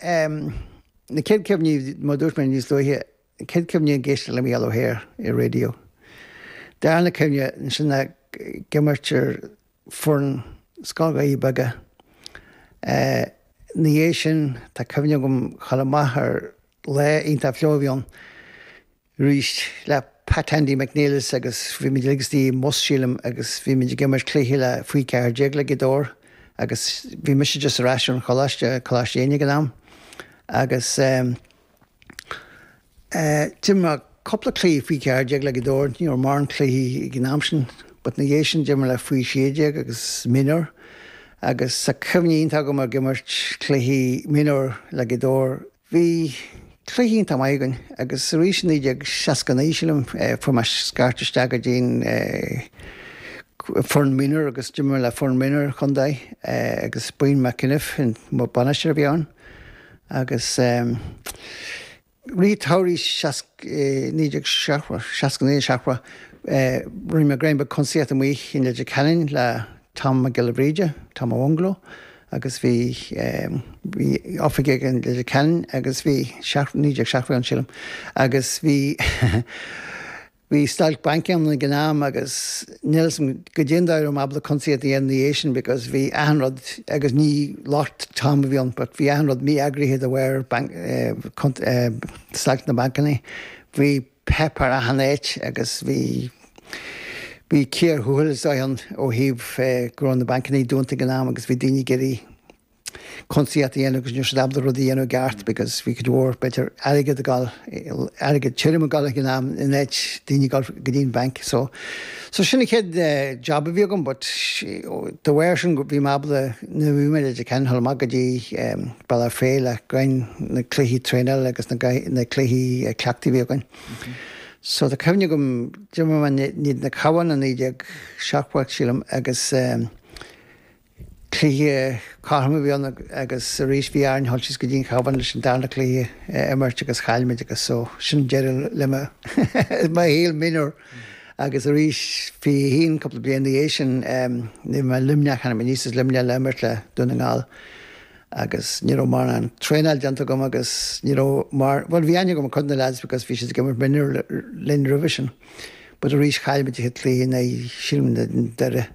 Na céad cuimhní, mar a dúirt mé níos luaithe, na céad cuimhní ag éisteacht le Micheál Ó hEithir ar an raidió. Darna cuimhne, ansin ag imirt ar foireann Scoil Dhoirí Beaga. Ina dhiaidh sin, tá cuimhne agam chomh maith ar lá iontach fliuch a bhí ann. arís le Pat 'Andy' McNelis agus bhí muid ag suí i mbus, sílim, agus bhí muid ag imirt cluiche le faoi cheathair déag le Gaoth Dobhair agus bhí mise just ar ais ón choláiste, Coláiste Éinne ag an am, agus ehm eh d'imir cúpla cluichí faoi cheathair déag le Gaoth Dobhair, ní raibh mórán cluichí ag an am sin but ina dhiaidh sin d'imir le faoi sé déag agus mionúr agus tá cuimhne iontach agam ag imirt cluichí mionúr le Gaoth Dobhair, Bhí cluichí iontach maith againn agus arís i 1969, sílim, fuair mé scairt isteach go dtí'n foireann minor agus d'imir mé le foireann minor an chontae agus Brian McEniff an bainisteoir a bhí ann agus i rith an tsamhraidh seasc, 1970, seasca naoi, seachtó, rinne mé greim beag cuntasaíocht amuigh i Leitir Ceanainn le Tom Mac Giolla Bhríde, Tom an Bhungaló, agus bhí bhí oifig aige i Leitir Ceanainn agus bhí seacht naoi déag seachtó a bhí ann sílim agus bhí bhí stailc bainc ann ag an am agus níl a fhios agam cad é an dóigh a raibh mé ábalta cuntasaíocht a dhéanamh ina dhiaidh sin because bhí achan rud agus ní locht Tom a bhí ann but bhí achan rud mí-eagraithe de bharr bainc eh cunta eh stailc na mbancanna bhí páipéar achan áit agus bhí bhí cíor thuathail is dóigh ann ó thaobh go raibh na bancanna dúnta ag an am agus bhí daoine ag iarraidh cuntasaíocht a dhéanamh agus ní raibh siad ábalta rudaí a dhéanamh i gceart because bhí cuid mhór b'fhéidir airgead ag dul airgead tirim ag dul ag an am in áit daoine ag dul go dtí'n bhanc so So sin an chéad job a bhí agam but dá bharr sin bhí mé ábalta nuair a bhí mé i Leitir Ceanainn a dhul amach go dtí Bealach Féich i gcoinne na cluichí traenála agus na na cluichí cleachtaidh a bhí againn. So tá cuimhne agam d'imir mé in éadan an Chabháin i 1970 sílim agus Cluiche cothrom a bhí ann agus arís bhí orainn a dhul síos go dtí an Chabhán leis an darna cluiche a imirt agus chaill muid agus so sin deireadh le mo mo shaol mionúr agus arís fiche haon cúpla bliain ina dhiaidh sin bhí mé i Luimneach tháinig mé aníos as Luimneach le imirt le Dún na nGall agus ní raibh mórán traenáil déanta agam agus ní raibh mar bhuel bhí aithne agam ar cuid de na leaids because bhí siad ag imirt mionúr linn roimhe sin but arís chaill muid cluiche in aghaidh sílim Doire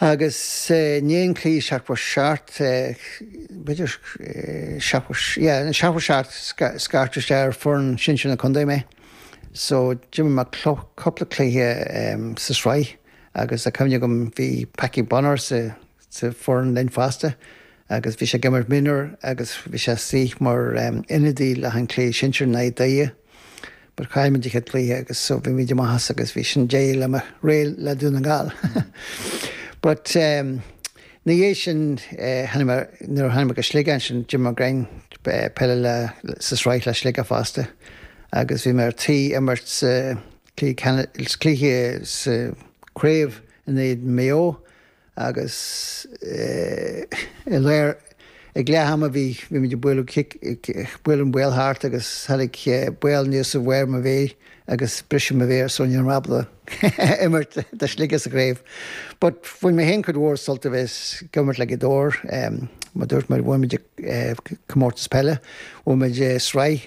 Agus i ndiaidh an chluiche, seachtó a seacht, b'fhéidir, seachtó, yeah, seachtó a seacht, scairteadh isteach ar foireann sinsir na contae mé. So, d'imir mé cúpla cluiche sa sraith agus tá cuimhne agam, bhí Packie Bonner sa foireann linn fosta agus bhí sé ag imirt mionúr agus bhí sé istigh mar ionadaí le haghaidh an cluiche sinsir in aghaidh Doire. But chaill muid an chéad cluiche agus so bhí muid amuigh as agus bhí sin deireadh le mo ré le Dún na Gall. But ehm ina dhiaidh sin eh tháinig mé nuair a tháinig mé go Sligeach ansin d'imir mé giota eh peile le sa sraith le Sligeach fosta agus bhí mé ar tí imirt sa cluiche cluiche sa craobh in éadan Maigh Eo Agus díreach ag leath ama bhí muid ag bualadh cic, ag bualadh an ball thart agus tháinig ball aníos ar bharr mo mhéir agus briseadh mo mhéar so ní raibh mé ábalta imirt do Shligeach sa gcraobh. But bhain mé féin cuid mhór sult as a bheith ag imirt le Gaoth Dobhair. Mar dúirt mé bhain muid comórtas peile, bhain muid sraith,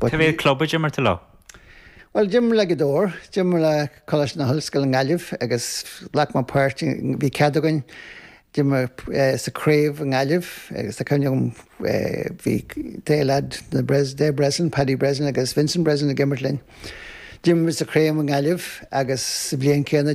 Cad é an club a d'imir tú leo? Bhuel, d'imir le Gaoth Dobhair, d'imir le Coláiste na hOllscoile i nGaillimh agus ghlac mé páirt, bhí cead againn imirt sa craobh i nGaillimh agus tá cuimhne agam bhí triúr lead na Bres, Dave Breslin, Paddy Breslin agus Vincent Breslin ag imirt linn. D'imir muid sa chraobh i nGaillimh agus sa bhliain chéanna